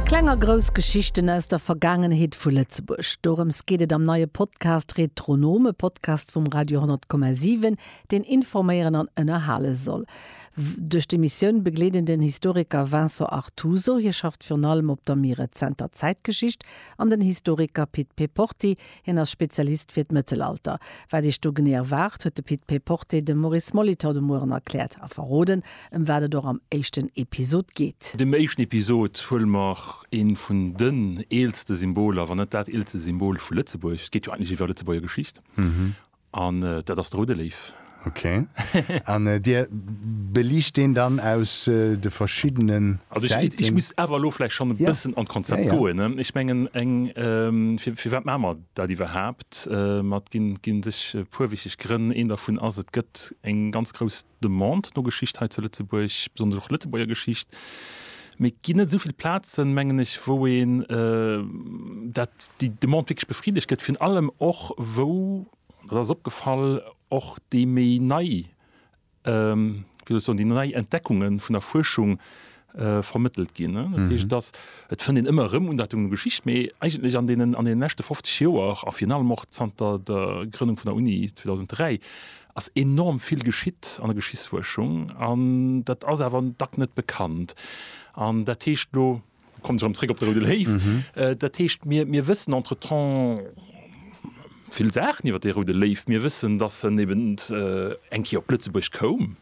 Kleng a grouss Geschichten aus der Vergaangenheet vu Lëtzebuerg, dorëms geet et am neie Podcast Retronom, e Podcast vum Radio 10,7, deen informéieren an ënnerhale soll. Duerch d'Emissioun begleet een den Historiker Vincent Artuso, hie schafft virun allem op der méi rezenter Zäitgeschicht, an den Historiker Pit Peporti, Hien ass Spezialist fir d'Mëttelalter. Wat Iech do genee erwaart, huet de Pit Péporté dem Maurice Molitor de Mueren erkläert a verroden, ëm wat et och am éischten Episod geet. An deem éischten Episod huele mer ee vun den eelste Symboler, wann net dat eelste Symbol vu Lëtzebuerg, et geet jo eigentlech iwwer Lëtzebuerger Geschicht, An dat ass de Rudde Léiw. Ok. An Dir beliicht deen dann aus de verschiddene Säiten? Also ech muss awer elo vläicht schonn e bëssen an d'Konzept goen. Ech mengen, firwat maache mer dat iwwerhaapt? Et ginn sech e puer wichteg Grënn. Een dervun ass, et gëtt eng ganz grouss Demande no Geschicht hei zu Lëtzebuerg, besonnesch och Lëtzebuerger Geschicht. Mee et ginn net esou vill Plazen, mengen ech, wou een dat, déi Demande wierklech befriddegt gëtt, virun allem och wou, dat ass opgefall, och déi méi nei, wéi soll ech soen, déi nei Entdeckungen vun der Fuerschung Äh, vermëttelt ginn. Dat heescht, dass mhm. et fënnt een ëmmer rëm un dat un Geschicht, mee eigentlech an deenen an den nächte 50 Joer a fir allem och zanter der Grënnung vun der Uni 2003 ass enorm vill geschitt an der Geschichtsfuerschung an dat ass awer an Dack net bekannt. An dat heescht lo kommt rëm zréck op der Rue de Léiw. Mhm. Äh, dat heescht mir, mir wëssen entretemps vill Saachen iwwer de Rue de Léiw. Mir wëssen, dass en eben äh, eng Kéier op Lëtzebuerg koum.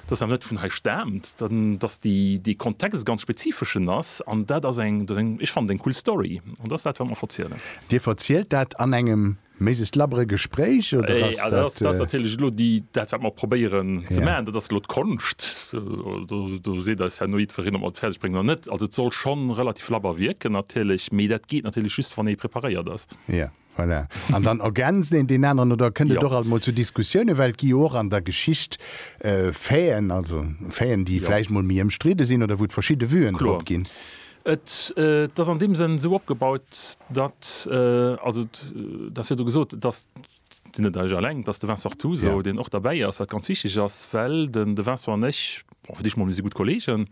dass dat net vun hei staamt, dass dee Kontext e ganz spezifeschen ass. An dat ass eng, ech fannen, eng cool Story. An dat ass dat, wat mer verzielen. Dir verzielt dat an engem méses labbere Gespréich, oder ass dat? Dat ass natierlech elo dat, wat mer probéieren ze maachen. Dat ass elo d'Konscht. Do seet eis herno jiddwereen, ob mer et fäerdeg bréngen oder net. Also et soll schonn relativ labber wierken natierlech, mee dat geet natierlech just, wann ee preparéiert ass. Jo, Voilà. An dann ergänzt een deen aneren oder kënnt et jo. och alt mol zu Diskussioune, well et gi jo och an der Geschicht äh, Faiten, also Faiten, déi jo. vläicht mol méi ëmstridde sinn oder wou et verschidde Vuen drop ginn. Et äh, ass an deem Sënn esou opgebaut, datt äh, also et ass jo do gesot, et ass sinn net ech alleng, et ass de Vincent Artuso, yeah. deen och derbäi ass, wat ganz wichteg ass, well den de Vincent an ech, bon, fir Dich mol, mir si gutt Kolleegen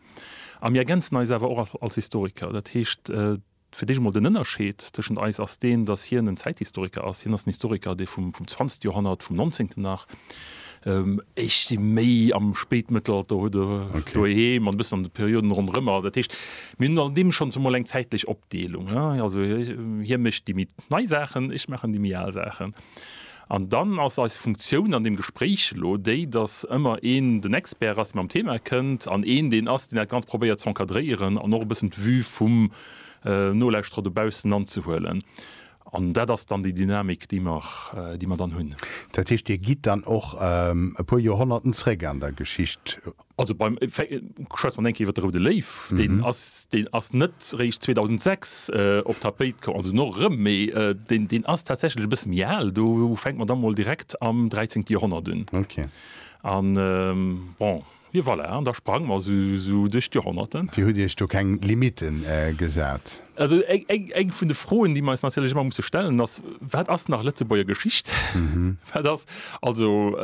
a mir ergänzen eis awer och als Historiker. Dat heescht, äh, Fir d'éischt emol den Ënnerscheed tëschent eis ass deen, datt hien en Zäithistoriker ass. Hien ass en Historiker, dee vum zwanzegste Joerhonnert, vum Nonzéngten nach, ech si méi am Spéitmëttelalter, huet e doheem an e bëssen an de Perioden ronderëm. Also dat heescht, mir hunn an deem schonns emol eng zäitlech Opdeelung. Also hie mécht déi méi nei Saachen, ech maachen déi méi al Saachen. An dann ass eis Funktioun an deem Gespréich elo déi, datt ëmmer een den Expert ass, dee mam Thema kënnt, an een deen ass, deen dat Ganzt probéiert ze encadréieren an och e bëssen d'Vue vum Nolauschterer dobaussen anzehuelen. An dat ass dann déi Dynamik, déi mer, déi mer dann hunn. Dat heescht, Dir gitt dann och e puer Joerhonnerten zréck an der Geschicht? Also beim, schwätze mer eng Kéier iwwer de Roude Léiw, deen ass, deen ass net réischt 2006 op d'Tapéit komm, also no erëm, mee deen, deen ass tatsächlech e bësse méi al, do fänke mer da mol direkt am dräizéngte Joerhonnert un. Okay. A bon, jo voilà, an da sprange mer esou duerch d'Joerhonnerten. Dir hutt Iech do keng Limitten gesat? Also eng vun de Froen, déi mer eis natierlech ëmmer musse stellen, ass, Wat ass nach Lëtzebuerger Geschicht? Wat ass also,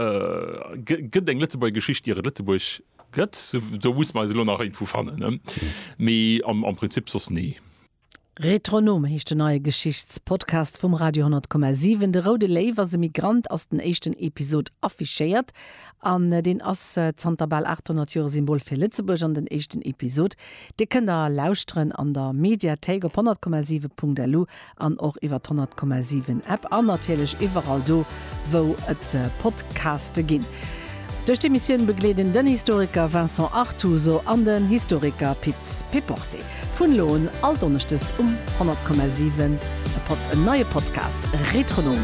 gëtt eng Lëtzebuerger Geschicht, ier et Lëtzebuerg gëtt? Do musse mer eis elo nach iergendwou fannen, mee am Prinzip soss nee. Retronom heescht den neie Geschichtspodcast vum Radio 10,7. De Roude Léiw ass e Migrant ass den éischten Episod affichéiert An deen ass zanter bal 800 Joer e Symbol fir Lëtzebuerg an den éischten Episod, dee kënnt der lauschteren an der Mediathéik op 100,7.lu an och iwwer d'100,7 App an natierlech iwwerall do, wou et Podcaste ginn. Duerch d'Emissioun begleeden den Historiker Vincent Artuso an den Historiker Pit Péporté vun elo un all Donneschdes um 100,7 e neie Podcast Retronom.